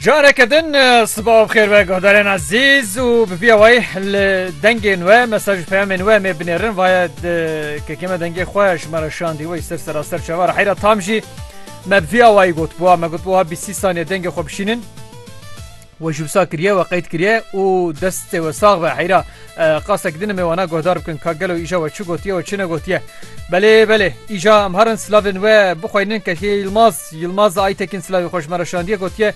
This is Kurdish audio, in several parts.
Careke din sibav xêr ve guhdarên ezîz û bi vîya wayî li dengên we mesaj û peyamên we mê binêrin vaye kekê me dengê xwe ji me re şandî wê ser seraser çava re heyra tam jî me bi vîya wayî gotbûa me gotbûa bîst sî saniye dengê xwe bişînin We ji wisa kiriye we qeyd kiriye û destê we sax be heyra qasek din me wana guhdar bikin ka gelo îja we çi gotiye we çi negotiye belê belê îja em harin slavên we bixweynin kekê Yilmaz Yilmaz Aytekin slavê xweş me reşandiye gotiye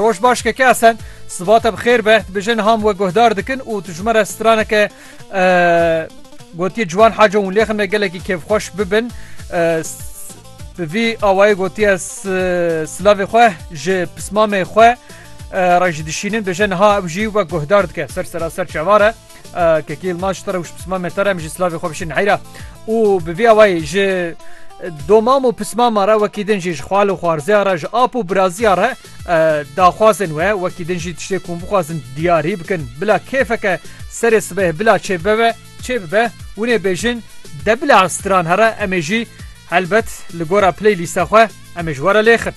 roj baş keke esen sibate bi xêr be bijin ham we guhdar dikin û tu ji me re straneke gotiye ciwan haca hûn lêxin me gelekî kêfxweş bibin Bi vî awayî gotiye silavê xwe ji pismamê xwe re jî dişînin bêje niha ew jî wek guhdar dike ser seraser çavar e. Kekî Yilmaz te re û pismamê te re em jî silavê xwe bişînin heyra û bi vî awayî ji domam û pismama re wekî din jî ji xwal û xwarzeya re ji ap û biraziya re daxwazên we wekî din jî tiştê ku em bixwazin diyarî bikin bila kêfeke serê sibeh bila çêbibe be. Çê bibe winê bêjin de bila stran here em ê jî helbet li gora playlîsta xwe em ê ji were lêxin.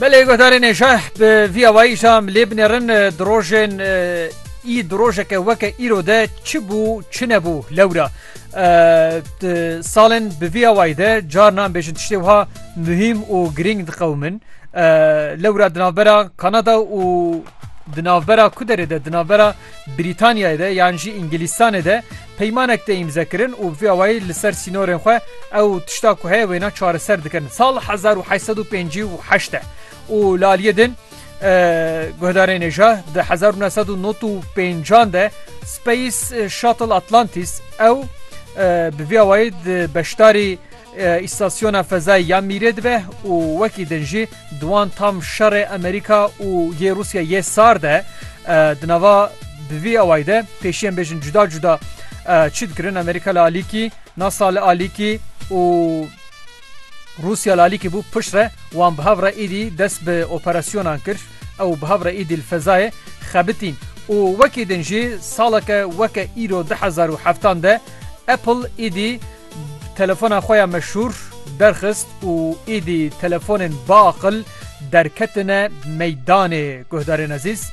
Belê gotarê nêşe bi vî awayî jî em lê binêrin di rojên ii di rojeke weke îro de çi bû çi nebû lewra Salên bi vî awayî de carna em bêjin tiştê wiha muhîm û girîng diqewimin. Lewra di navbera Kanada û di navbera ku derê de di navbera Brîtanyayê de yan jî Îngilîstanê de peymanek tê îmzekirin û bi vî awayî li ser sînorên xwe ew tişta ku heye wêna çareser dikin. Sal hezar û heşt sed û pêncî û heşt e û li aliyê din Guhdarê nêja di hezar û neh sed û nod û pêncan de Space Shuttle Atlantis ew bi vî awayî di beşdarî îstasyona fezayê ya Mîrê dibe û wekî din jî di wan tam şerê Amerîka û yê Rûsya yê sar de di nava bi vî awayî de pêşiyên bêjin cuda cuda çi dikirin Amerîka li alîkî NASA li alîkî û Rûsya li alîkî bû pişt re wan bi hev re êdî dest bi operasyonan kir, ew bi hev re êdî li fezayê xebitîn û wekî din jî saleke weke îro du hezar û heftan de Apple êdî telefona xwe ya meşhûr derxist û êdî telefonên biaqil derketine meydanê. Guhdarên ezîz,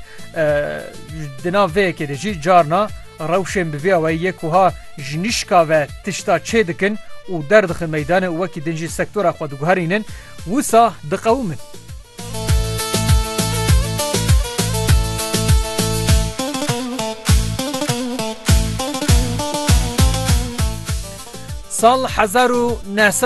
di nav vê yekê de jî carna, Rewşên bi vî awayî yê ku ha ji nişka ve tişta çê dikin û derdixin meydanê û wekî din jî sektora xwe diguherînin, wisa diqewimin. Sal hezar û neh sed